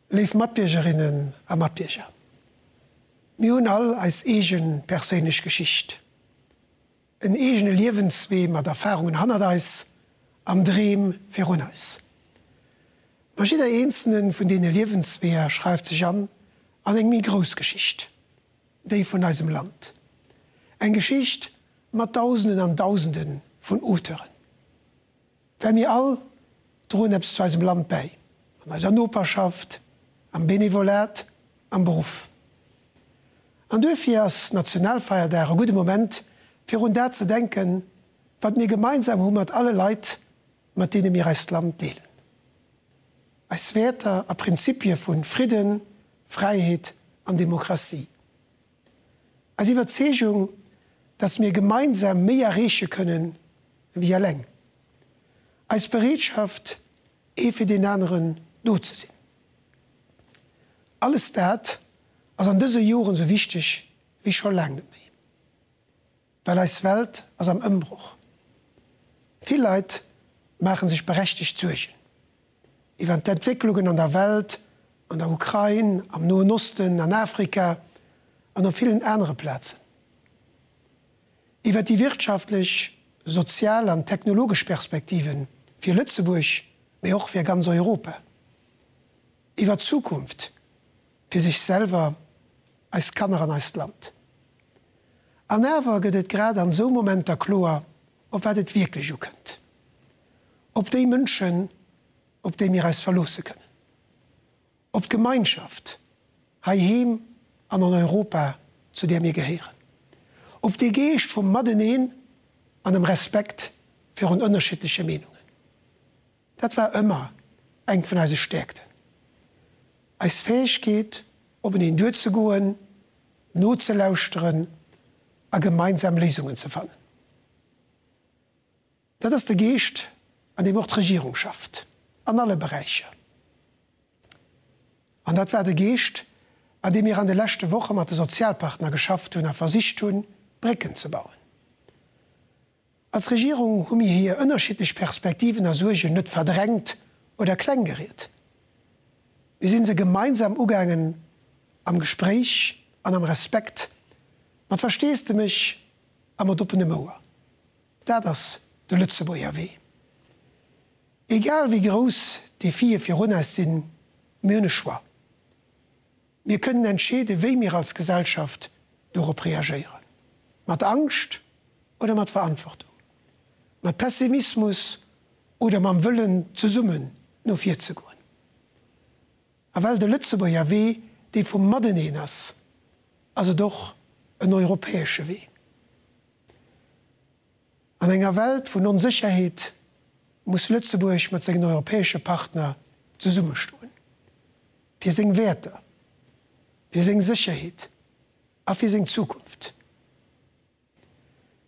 Léif Matbiergerinnen a Matbierger, mir hunn all eis eege perséinlech Geschicht, en eegene Liewenswee mat Erfarungen hannert eis an Dreem virun eis. Ma jidder eenzele vun deene Liewensweeër schreift sech an an eng méi grouss Geschicht, déi vun eisem Land. Eng Geschicht mat Dausenden an Dausende vun Auteuren. Well mir all droen eppes zu eisem Land bäi, an eiser Noperschaft, am Benevolat, am Beruff. An duerfir ass Nationalfeierdag e gudde Moment, fir un dat ze denken, wat mir gemeinsam hu mat alle Leit, mat deene mir eist Land deelen. Eis Wäerter a Prinzipie vu Fridden, Fräiheet an Demokratie. Eis Iwwerzeegung, datt mir gemeinsam méi erreeche kënne wéi eleng. Eis Bereetschaft, ee fir deen aneren do ze sinn. Alles dat ass an dëse Joren esou wichteg wéi scho laang net méi. Well eis Welt ass am Ëmbroch. Vill Leit maache sech berechtegt Suergen iwwer d'Entwécklungen an der Welt, an der Ukrain, am Noen Osten, an Afrika an op villen anere Plazen. Iwwer déi wirtschaftlech, sozial an technologesch Perspektive fir Lëtzebuerg, mee och fir ganz Europa. Iwwer d'Zukunft. fir sech selwer, eis Kanner an eist Land. An awer gëtt et grad an esou Momenter kloer, op wat et wierklech ukënnt, op déi Mënschen, op déi mir eis verloosse kënnen, op d'Gemeinschaft heiheem an an Europa, zu där mir gehéieren, op dee Geescht vum Mateneen an dem Respekt virun ënnerschiddleche Meenungen. Dat war ëmmer eng vun eise Stäerkten, eis Fäegkeet openeen duerzegoen, nozelauschteren a gemeinsam Léisungen ze fannen. Dat ass de Geescht an deem och d'Regierung schafft, an alle Beräicher. An dat war de Geescht an deem mir an de leschte Woche mat de Sozialpartner geschafft hunn a versicht hunn, Brécken ze bauen. Als Regierung hu mir hir ënnerschiddlech Perspektiven a Suergen net verdrängt oder kleng geriet. Mir si se gemeinsam ugaangen, am Gespréich an am Respekt, mat Versteesdemech a mat oppenem Ouer. Dat ass de Lëtzebuerger Wee. Egal wéi grouss d'Defie virun eis sinn, mir hunn e Choix. Mir kënnen entscheeden, wéi mir als Gesellschaft dorop reagéieren, mat Angscht oder mat Verantwortung, mat Pessimismus oder mam Wëllen, zesummen no vir ze goen. A well de Lëtzebuerger Wee dee vum Mateneen ass, ass et och en europäesche Wee. An enger Welt vun Onsécherheet muss Lëtzebuerg mat sengen europäesche Partner zesummestoen, fir seng Wäerter, fir seng Sécherheet a fir seng Zukunft.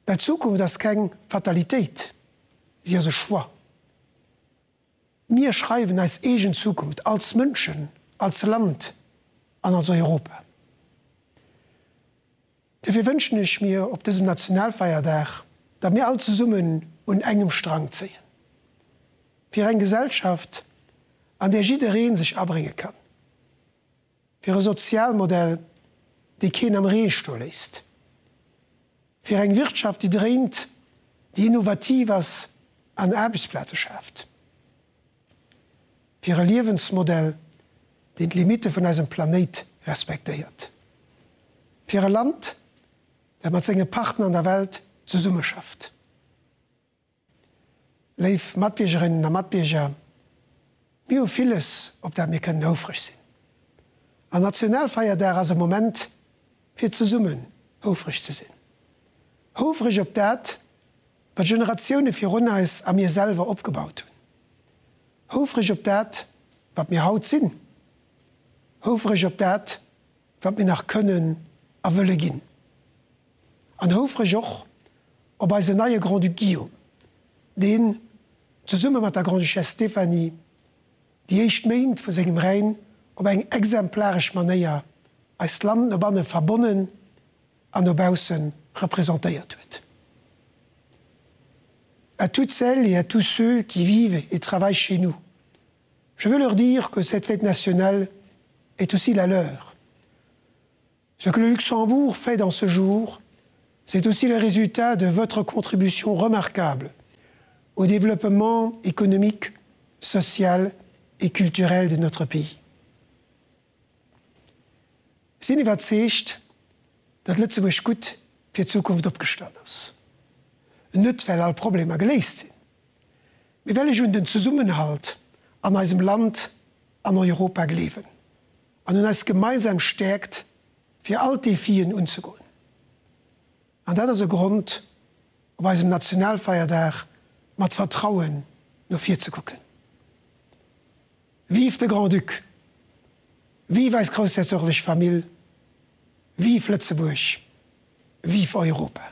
Well d'Zukunft ass keng Fatalitéit, si ass e Choix. Mir schreiwen eis eegen Zukunft als Mënschen, als Land an als Europa. Dofir wënschen ech mir op dësem Nationalfeierdag, datt mir all zesummen un engem Strang zéien, fir eng Gesellschaft, an där jidderee sech abrénge kann. Fir e Sozialmodell, dee keen am Ree sto léisst. Fir eng Wirtschaft, déi dréint, déi innovativ ass an Aarbechtsplaze schaaft. Fir e Liewensmodell, deen d'Limitte vun eisem Planéit respektéiert. Fir e Land, dat mat senge Partner an der Welt zesummeschafft. Léif Matbiergerinnen a Matbierger, mir hu villes, op dat mir kënnen houfreg sinn. An Nationalfeierdag ass e Moment, fir zesummen houfreg ze sinn. Houfreg op dat, wat Generatioune virun eis a mir selwer opgebaut hunn. Houfreg op dat, wat mir haut sinn. Houfreg op dat, wat mir nach kënnen a wëlle ginn. an houfreg och op eisen neie Grand-Duc Guillaume, deen zesumme mat der Grande-Duchesse Stéphanie déi éischt Méint vu sengem Règne op eng exemplaresch Manéier eist Land no banne verbonnen an no bausse représentéiert huet. À toutes celles et à tous ceux qui vivent et travaillent chez nous, je veux leur dire que cette fête nationale est aussi la leur. Ce que le Luxembourg fait dans ce jour, c'est aussi le résultat de votre contribution remarquable au développement économique, social et culturel de notre pays. Sinn iwwerzeegt, datt Lëtzebuerg gutt fir d'Zukunft opgestallt ass. Net well all Problemer geléist sinn, mee well ech un den Zesummenhalt an eisem Land an Europa gleewen. An un eis gemeinsam Stärkt fir all d'Defien unzegoen. An dat ass e Grond op eisem Nationalfeierdag mat Vertrauen no vir ze kucken. Vive de Grand-Duc! Vive eis groussherzoglich Famill! Vive Lëtzebuerg! Vive Europa!